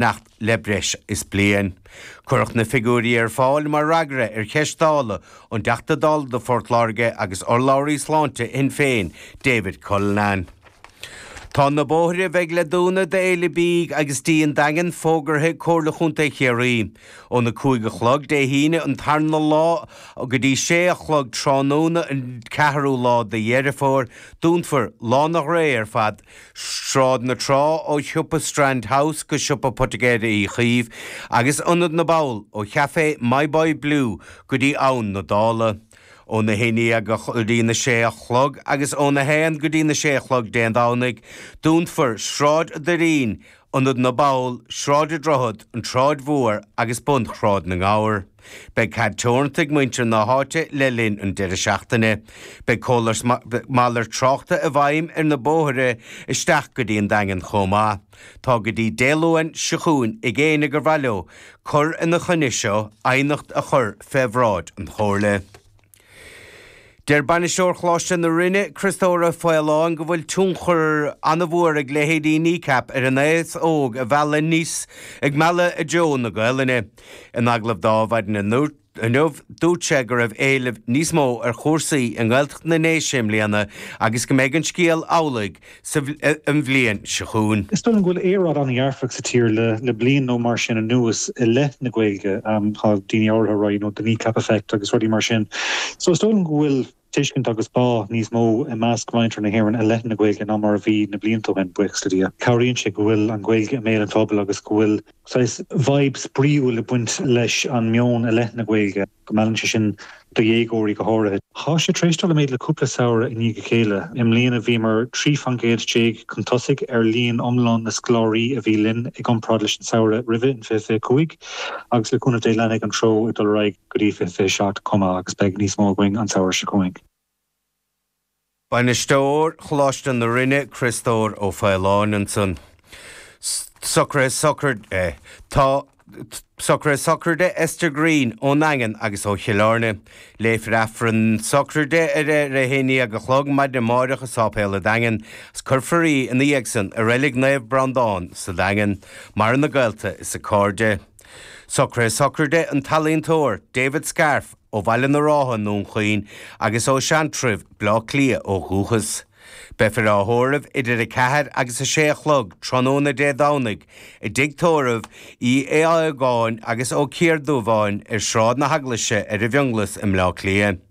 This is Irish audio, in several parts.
nacht le breis is bliain. Cuireadh na figiúirí ar fáil mar fhreagra ar cheist Dála ón dTeachta Dála do Phort Láirge agus urlabhraí sláinte Shinn Féin, David Cullinane. Tá na bóithre a bheidh le dúnadh d'Fhéile Bídh agus Dí an Daingin fógartha ag Comhairle Chontae Chiarraí. Óna 5 a chlog Dé hAoine an tarna lá go dtí 6 a chlog tráthnóna an 4ú lá de Dheireadh Fómhair, dúnfar Lána Ghrae ar fad Sráid na Trá ó shiopa Strand House go siopa poitigéir Uí Chaoimh agus Ionad na bPoll ó Chafé My Boy Blue go dtí Abhainn na Dála. Ó na haon déag go dtí na sé a chlog agus ó na haon go dtí na sé a chlog Dé Domhnaigh, dúnfar Sráid an Doirín, Ionad na bPoll, Sráid an Droichid, An tSráid Mhór agus Bun Shráid na nGabhar. Beidh cead teoranta ag muintir na háite le linn an deireadh seachtaine. Beidh córas malairt tráchta i bhfeidhm ar na bóithre isteach go dtí an Daingean chomh maith. Tá go dtí Dé Luain seo chugainn ag éinne gur mhaith leo cur ina choinne seo aighneacht a chur fé bhráid an Chomhairle. Deir bainisteoir Choláiste na Rinne, Criostóir Ó Faoláin go bhfuil tionchar an-mhór ag leithéidí Kneecap ar an aos óg a mhealladh aníos ag mealladh i dtreo na Gaolainne. In agallamh dó maidin inniu, dúirt sé go raibh éileamh níos mó ar chúrsaí i nGaeltacht na nDéise i mbliana agus go mbeidh an scéal amhlaidh an bhliain seo chugainn. Is dóigh liom go bhfuil aeráid an-dhearfach sa tír le bliain nó mar sin anuas i leith na Gaeilge. Tá daoine áirithe ag rá you know the kneecap effect agus rudaí mar sin. So is dóigh liom go bhfuil tuiscint agus bá níos mó i measc mhuintir na hÉireann i leith na Gaeilge ná mar a bhí na blianta ó shin, buíochas le Dia. Cabhraíonn sé go bhfuil an Ghaeilge i mbéal an phobail agus go bhfuil saghas 'vibe' spraíúil ag baint leis an meon i leith na Gaeilge. go meallann sé sin do dhéagóirí go háirithe. Tá sé tar éis dul i méid le cúpla samhradh i ndiaidh a chéile. I mbliana bhíomar 13 faoin gcéad chun tosaigh ar líon iomlán na scoláirí a bhí linn i gcomparáid leis an tsamhradh roimhe in 2025 agus le cúnamh Dé leanfaidh an treo ag dul ar aghaidh go dtí 2027 chomh maith agus beidh níos mó againn an tsamhradh seo chugainn. Bainisteoir Choláiste na Rinne, Criostóir Ó Faoláin ansan. Socruithe sochraide. Tá socruithe sochraide Esther Green ón nDaingean agus ó Chill Airne. Léifear Aifreann sochraide ar a 11 a chlog maidin amáireach i Sáipéal an Daingin agus cuirfear í ina dhiaidh san i Reilig Naomh Breandán sa Daingean. Maireann a gaolta is a cairde. Socruithe sochraide an t-ealaíontóir David Scarf ó Bhaile na Rátha i nDún Chaoin agus ó Sheantraibh, Bleá Cliath ó dhúchas. Beifear á thórramh idir 4 agus 6 a chlog tráthnóna Dé Domhnaigh i dTigh Tórraimh Uí Aodhagáin agus Ó Ciardhubháin ar Sráid na hEaglaise ar an bhFionnghlas i mBleá Cliath.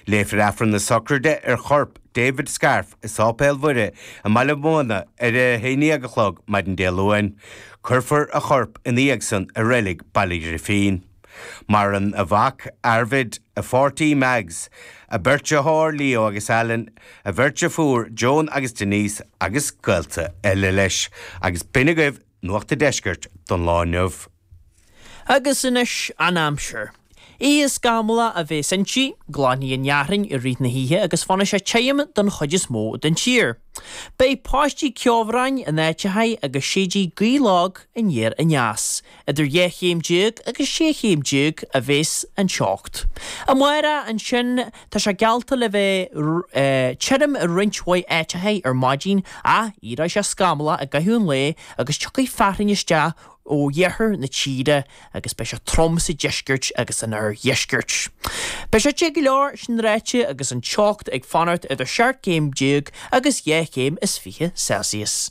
Léifear Aifreann na Socraide ar chorp David Scarf i Séipéal Mhuire i mBaile Mhunna ar a 11 a chlog maidin Dé Luain. Cuirfear a chorp ina dhiaidh san i reilig Baile Ghrifín. Maireann a mhac, Arvid, a pháirtí, Mags, a bheirt deartháir, Leo agus Alan, a bheirt deirféar, Joan agus Denise, agus gaolta eile leis. Agus b'in agaibh Nuacht an Deiscirt don lá inniu. Agus anois an aimsir. Oíche scamallach a bhéas inti, glanfaidh an fhearthainn i rith na hoíche agus fanfaidh sé tirim don chuid is mó den tír. Beidh paistí ceobhráin in áiteachaí agus séidfidh gaoth lag aniar aneas. Idir dhá chéim déag agus sé chéim déag a bhéas an teocht. Amárach ansin Tá sé geallta le bheith tirim i roinnt mhaith áiteachaí ar maidin ach éireoidh sé scamallach i gcaitheamh an lae agus tiocfaidh fearthainn isteach ó iarthar na tíre agus beidh sé trom sa deisceart agus san oirdheisceart. Beidh sé te go leor sin ráite agus an teocht ag fanacht idir 17 céim agus dhá chéim is fiche Celsius.